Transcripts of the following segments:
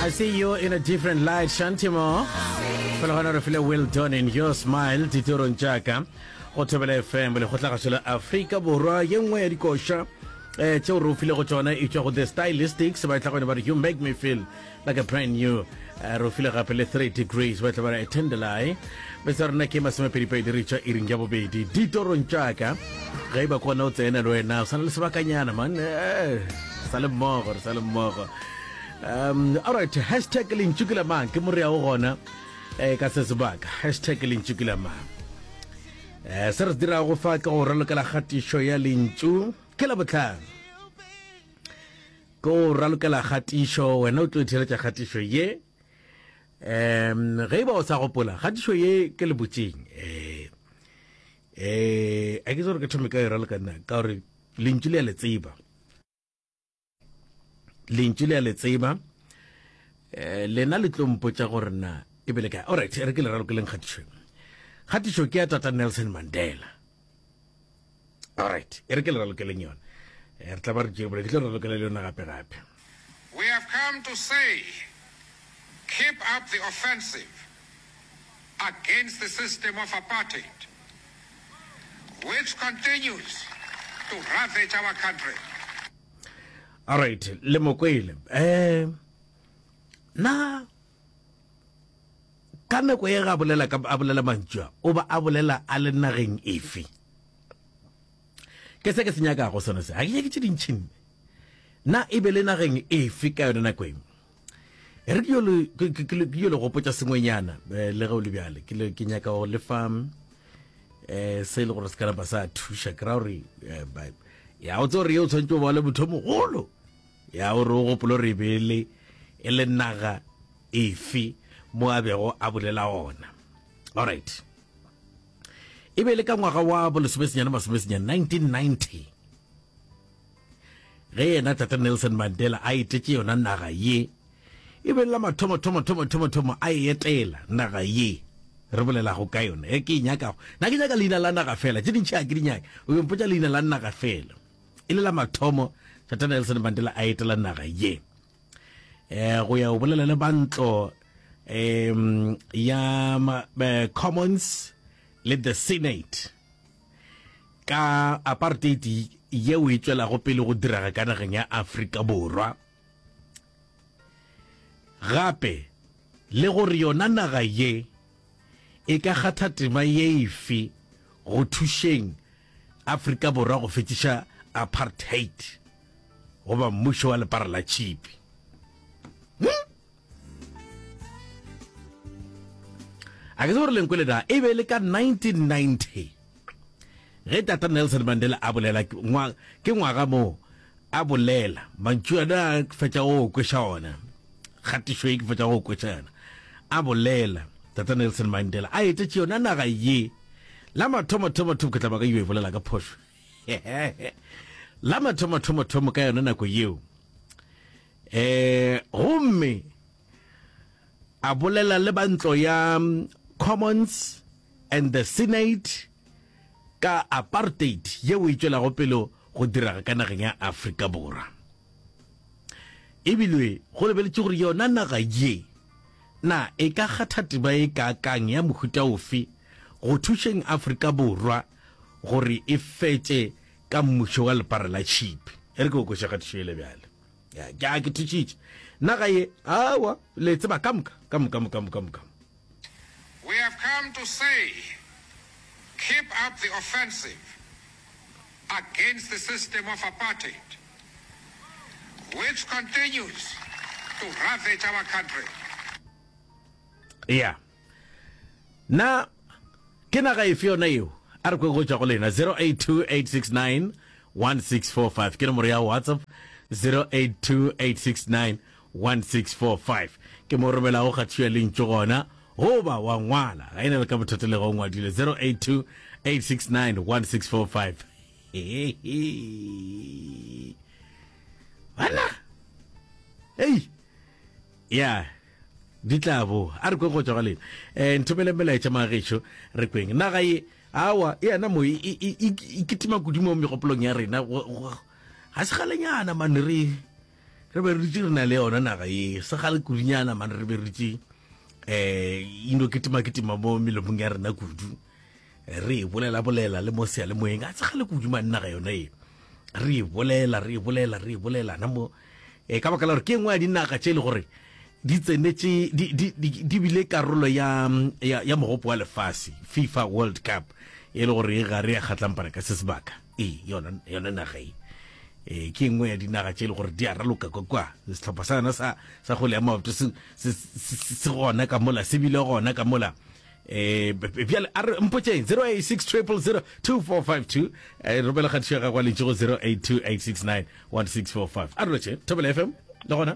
I see you in a different light, Shantimo. Fela gona re file well done in your smile ditorong tšaka go thobela fm lekgotlagašo la afrika borwa ye nngwe ya dikoša eh tšeo re o filego tšona e tšwa go the stylistics ba e tla gone ba re you make me feel like a brand new Eh, re file gape le 3 degrees ba tla ba tendelai bese rena ke masomepedipedi re tšwa iring ja bobedi ditorong tšaka ge e ba kona o tsena le wena o sana le sebakanyana man eh, sa le mmogo re sa le mmogo um alright hashtag lentšu ke lamang ke morea o gona um ka se sebaka hashtag lentšu ke lamang um se re se dirago fa ke go ralokela kgatišo ya lentšu ke la botlhano Tlo ralokela kgatišo, wena o tlo itheeletša kgatišo ye. Um, ge e ba o sa gopola, kgatišo ye ke lebotšeng. Eh, eh, a ke gore ke thome ka e raloka nna, ka gore lentšu le a le tseba. Lentšu le a le tseba. Eh, lena le tlo mpotša gore na e bele kae. Alright, re ke le ralokeleng kgatišo. Kgatišo ke ya Tata Nelson Mandela. Alright, e re ke le ralokeleng yona. Eh, re tla ba re tšere bole, ke tlo ralokela le yona gape gape. We have come to say, keep up the offensive against the system of apartheid, which continues to ravage our country. Alright, le mokwele. Eh, na ka nako e ga bolela ka a bolela mantšu a o ba a bolela a le nageng efe ke se ke se nyakago sone se ga ke nyake tše dintšhi nne na e be le nageng efe ka yone nako eng re ke yo le gopotsa sengwenyana eh, le ge o le bjale ke nyaka go le fa um se e le gore se ka napa sa thuša ke ra gore eh, ya o tse gore ye o tshwanetse o ba le motho mogolo Ya, o re o gopola gore e be e le, e le naga efe mo a bego a bolela ona. Alright. E be e le ka ngwaga wa bolesomesenyane masomesenyane, 1990, ge yena Tata Nelson Mandela a etetše yona naga ye, e be la mathomo thomo thomo thomo thomo a e etela naga ye re bolelago ka yona e ke e nyakago na ke nyaka leina la naga fela tše dintšhi a ke di nyake o yo mpotša leina la naga fela e le la mathomo Tata Nelson Mandela a etela naga ye eh go ya o bolela le bantlo um ya eh, commons le the senate ka apartheid yeo e tswelago pele go diraga ka nageng ya afrika borwa gape le gore yona naga ye e ka kgatha tema ye efe go thušeng Afrika Borwa go fetiša apartheid goba mmušo wa lepara la tšhipi. Hmm? A ke se gore lenkwe le na e be le ka 1990 ge tata Nelson Mandela a bolela ke ngwaga moo a bolela mantšu ana a fetša go kweša ona kgatišo e ke fetša go kweša yona a bolela tata Nelson Mandela a etetše yona naga ye La mathomo-thomo-thomo ke tla ba ka yo e bolela ka phošo. La mathomo-thomo-thomo ka yona nako yeo. Eh, gomme a bolela le ba ntlo ya mm, Commons and the Senate ka apartheid yeo e tšwelago pele go diraga ka nageng ya Afrika Borwa. Ebile go lebeletše gore yona naga ye Na e ka kgatha tema e kaakang ya mohuta ofe go thušeng Afrika Borwa gore e fetše ka mmušo wa lepara la tšhipi? E re ke go kweša kgatišo yele bjale. Ya, ke a ke thušitše. Naga ye, aowa, le tseba, ka moka, ka moka, moka, moka, moka. We have come to say, keep up the offensive, against the system of apartheid which continues to ravage our country. Eya. Na ke naga efe yona eo? A re kwe go tšwa go lena 0828691645 ke nomoro ya WhatsApp 0828691645. 1645 ke mo romelago kgathiyo ya lentšu gona goba wa ngwala ga e na le ka bothata le ga o ngwadile 0828691645 bana ei ya di tla bo a re kweng go tswa ga lena um nthomele melaetša magešo re kweng naga ye awa e yana mo e, e, e, e kitima kudu mo megopolong ya rena ga se galenyana mane re Re be re dutše re na le yona naga ye segale kudunyana mane re be re dutše um ino ketimaketima mo melomong ya rena kudu re e bolelabolela le mo sealemoeng a segale kudu mane naga yona e re e bolela re e bolela re e bolela na mo um ka baka la gore ke engwe ya dinaga tše e le gore di tsenetše di bile karolo ya ya mogopo wa lefase fifa world cup e le gore e gare ya kgatlampana ka se sebaka ee yona yona naga e eh ke nngwe ya dinaga tše e le gore di a raloka kwa kwa setlhopha sa yona sa sa go lea maoto se se- se se gona ka mola se bile gona ka mola eh bjale a re mpotšeng 0860002452 eh romela kgatišo ya gago a lentše go 0828691645 a re loše thobela fm le gona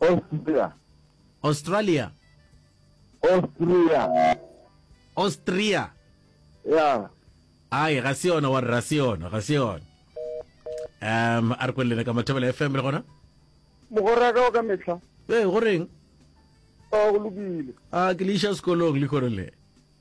Austria. Australia. Austria. Austria. Yeah. Ai, ga se yona wa re, ga se yona, ga se yona. Um, a re kwelele ka Mathobela FM le gona? Mogora ka o ka mehla. Ee, go reng? A go lokile. A ke le iša sekolong le kgorele.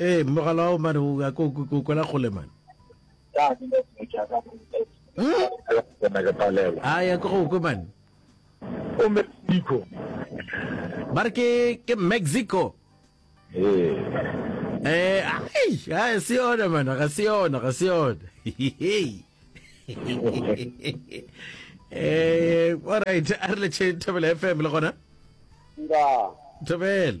Ee, mogala wa mane o ya ko ko kwela kgole mane. Ka ke le go ja ka go na ke palela. A ya ko go kwe mane. O Mexico. Ba re ke ke Mexico. Ee. Eh, ai, ai se yona mana, ga se yona, ga se yona. Eh, all right, a re le tšhe Thobela FM le gona. Nda. Thobela.